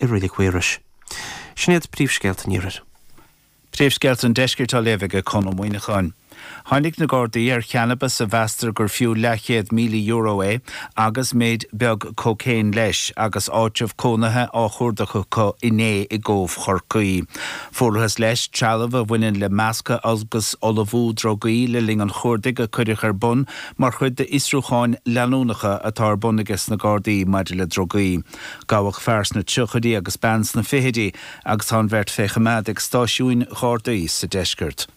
i Reilig Mhaorais. Sin iad príomhscéalta an iarthair. Príomhscéalta an deiscirt á léamh aige Conn Ó Muíneacháin. Tháinig na Gardaí ar channabas a mheastar gur fiú leathchéad míle euro é agus méid beag cocaine leis agus áitreabh cónaithe á chuardach acu inné i gCóbh Chorcaí. Fuarthas leis trealamh a bhaineann le meascadh agus ullmhú drugaí le linn an chuardaigh a cuireadh ar bun mar chuid d'fhiosrúcháin leanúnacha atá ar bun aige sna Gardaí maidir le drugaí. Gabhadh fear sna tríochaidí agus bean sna fichidí agus tá an bheirt fé choimeád ag stáisiúin Ghardaí sa deisceart.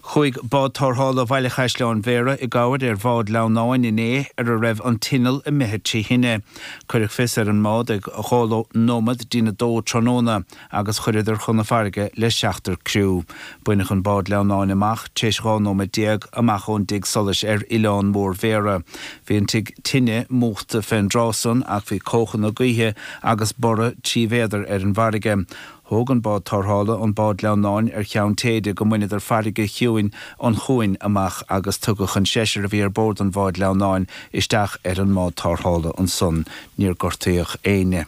Chuaigh Bád Tárthála Bhaile Chaisleáin Bhéarra i gcabhair ar bhád lamhnáin inné ar a raibh an t-inneall imithe trí thine. Cuireadh fios ar an mbád ag dhá nóiméad dtína dó tráthnóna. agus chuireadar chun na farraige le seachtar criú. Baineadh an bád lamhnáin amach tar éis 12 nóiméad, amach ón dtigh solais ar Oileán Mór Bhéara. Bhí an tigh tine múchta fén dtráth san ach bhí cóchanna gaoithe agus borradh trí mhéadar ar an bhfarraige. Thóg an bád tárthála an bád lamhnáin ar cheann téide go mbaineadar farraige chiúin an chuain amach agus tugadh an seisear a bhí ar bord an bháid lamhnáin isteach ar an mbád tárthála ansan. Níor gortaíodh éinne.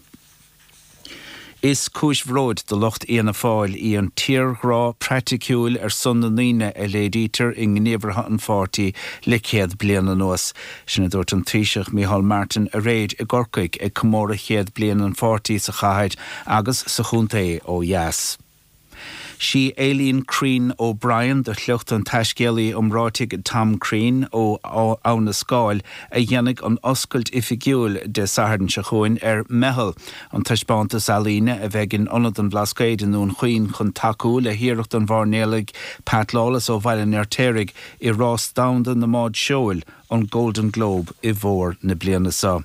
Is cúis bhróid do lucht Fhianna Fáil í an tírghrá praiticiúil ar son na ndaoine a léirítear i ngníomhartha an pháirtí le céad bliain anuas. Sin a dúirt an Taoiseach Micheál Martin aréir i gCorcaigh ag comóradh chéad bliain an pháirtí sa chathair agus sa chontae ó dheas. Sí Aileen Crean O'Brien de shliocht an taiscéalaí iomráitigh Tom Crean ó Abha na Scáil a dhéanfaidh an oscailt oifigiúil Dé Sathairn seo chugainn ar Meitheal, an taispeántas ealaíne a bheidh in Ionad an Bhlascaoid i nDún Chaoin chun tacú le hiarracht an mhairnéalaigh Pat Lawless ó Bhaile an Fheirtéaraigh i Rás Domhanda na mBád Seoil, an Golden Globe, i bhfómhar na bliana seo.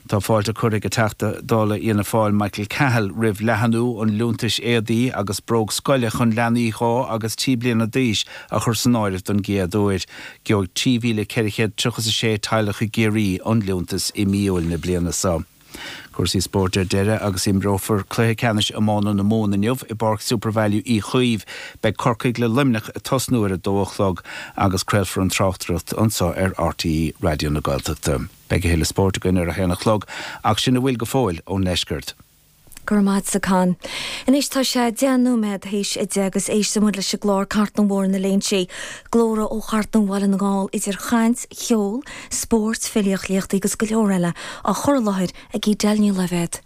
Tá fáilte curtha ag an Teachta Dála Fhianna Fáil Michael Cahill roimh leathnú an liúntais éadaí agus bróg scoile chun leanaí dhá agus trí bliana d'aois a chur san áireamh don gcéad uair. Gheobhaidh 3,400 tríocha is a sé teaghlach i gCiarraí an liúntas i mí Iúil na bliana seo. Cúrsaí spóirt ar deireadh agus imreofar cluiche ceannais iomána na Mumhan inniu i bPáirc Supervalu Uí Chaoimh. Beidh Corcaigh le Luimneach ag tosnú ar a dó a chlog agus craolfar an tráchtaireacht anseo ar RTÉ Raidió na Gaeltachta. Beidh a thuilleadh spóirt againn ar a haon a chlog ach sin a bhfuil go fóill ón ndeisceart. Go raibh maith agat a Chonn. Anois tá sé deich nóiméad théis a deich agus éistfidh muid leis an gclár Cartlann Bhóthar na Léinsí. Glórtha ó Chartlann Bhaile na nGall idir chaint, cheol, spóirt, filíocht, léachtaí agus go leor eile á chur i láthair ag Edel Ní Loibhéad.